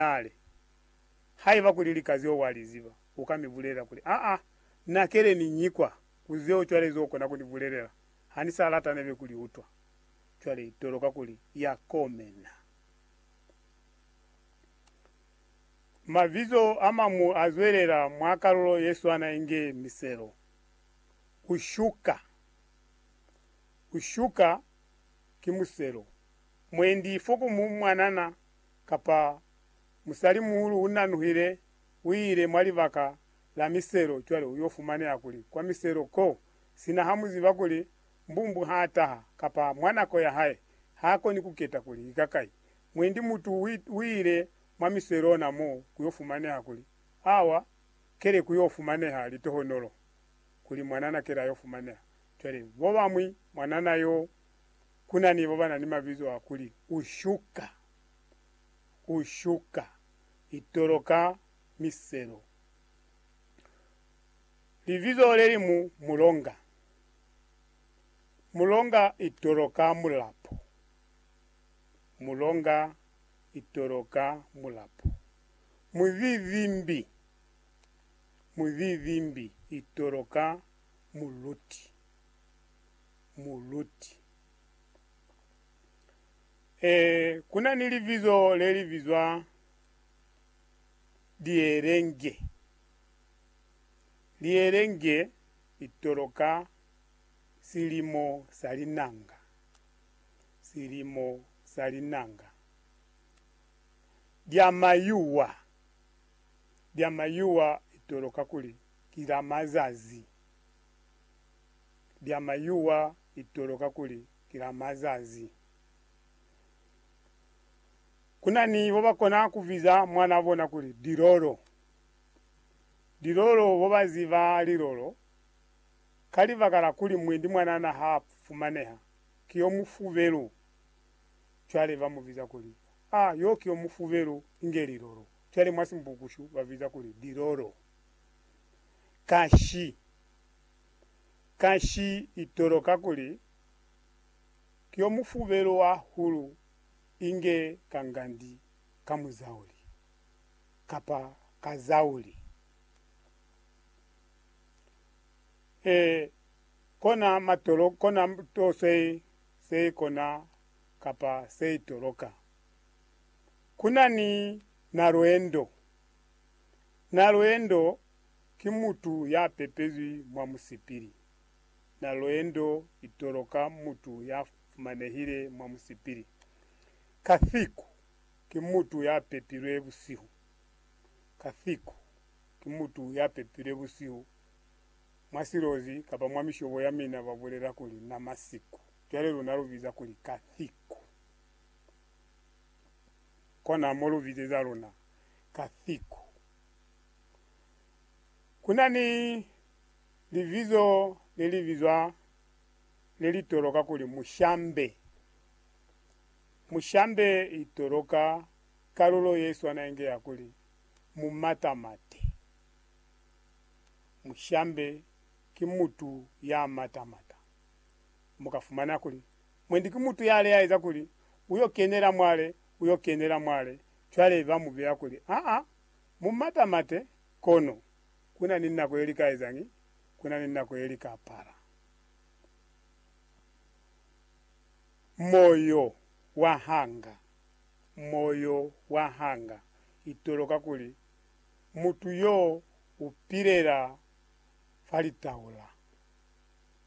kale. Haiba kuli lika zeo wa li ziba, u ka mi bulelela kuli, Aa, na kele ni nyi kwa, ku zeo cwale zo kona ku ni bulelela? Ha ni sa lata nebe ku li utwa. Cwale i toloka kuli ya komena. Mabizo a mañwi a zwelela mwa kalulo ye swana inge miselo. Ku shuka. Ku shuka ki muselo. Mwendi fo ku mu mwanana. kapa musali-muhulu unanuhile uile mwa libaka la miselo, cwale uyo fumaneha kuli kwa miselo ko, sina hamuziba kuli mbumbu haataha, kapa mwa nako yahae, haakoni kuketa kuli ki kakai, mwendi mutu uile mwa miselo ona mo kuyo fumaneha kuli awa kele kuyo fumaneha litohonolo, kuli mwanana kele ayo fumaneha, cwale bobañwi mwanana yo. Ku na ni bo ba na ni mabizo a kuli, u shuka, u shuka, i toloka miselo. Libizo le li mu, mulonga. Mulonga i toloka mulapo. Mulonga i toloka mulapo. Muzizimbi, muzizimbi i toloka muluti. Muluti. Ee, ku na ni libizo le li bizwa lielenge. Lielenge li toloka silimo sa linanga. Silimo sa linanga. Lya mayuwa. Lya mayuwa li toloka kuli ki la mazazi. bya mayuwa itolo kakuli kila mazazi kuna ni bobakona kubiza mwana bona kuli Dilolo. Dilolo bobaziba lilolo ka libaka la kuli mwendi mwanana ha fumaneha ki yo mufubelu cwale ba mubiza kuli, A yo ki yo mufubelu inge Lilolo. Cwale mwa Simbukushu babiza kuli Dilolo. Kashi. Kanshi itoloka kuli, Ki yo mufubelo wa hulu inge ka ngandi ka muzauli, kapa ka zauli. E, kona matolo, kona to se, se kona kapa se itoloka. Kuna ni nalwendo, nalwendo Ki mutu ya pepezwi mwa musipili, na loendo itolo ka mutu ya fumanehile mwa musipili. Kathiku ki mutu ya pepilwe busihu. Kathiku ki mutu ya pepilwe busihu mwa silozi kapa mwa mishobo ya mina ba bulela kuli na masiku. Cwale luna lu biza kuli Kathiku. Kona mo lu bizeza luna Kathiku. Ku na ni libizo le li bizwa le li toloka kuli mushambe. Mushambe i toloka kalulo ye swana inge ya kuli mumatamate. Mushambe ki mutu ya matamata. Mu ka fumana kuli, mwendi ki mutu ya leaeza kuli, U yo kenela mwale, u yo kenela mwale, cwale ba mu beya kuli, Aa, Mu matamate, kono, ku na ni nako ye li ka ezañi? Ku na ni nako ye li ka apara. Moyo wa hanga. Moyo wa hanga. Itolo kakuli, mutu yo u pilela fa litaula.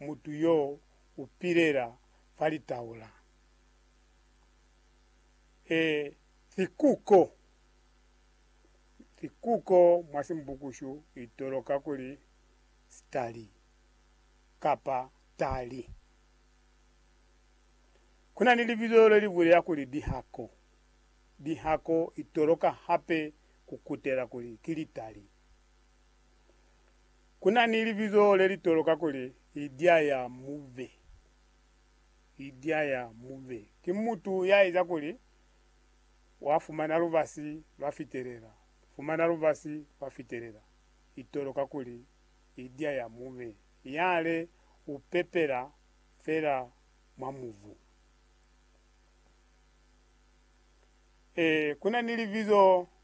Mutu yo u pilela fa litaula. E, sikuko. Likuko mwa Simbukushu litoloka kuli stali kapa tali. Kuna ni libizo le li bulela kuli dihako. Dihako itoloka hape ku kutela kuli ki litali. Kuna ni libizo le li toloka kuli idya ya mube. Idya ya mube ki mutu ya eza kuli Wa fumana lubasi lwa fitelela, fumana lubasi lwa fitelela, itolo kakuli i dia ya mube, yale u pepela fela mwa mubu. Ee, kuna ni libizo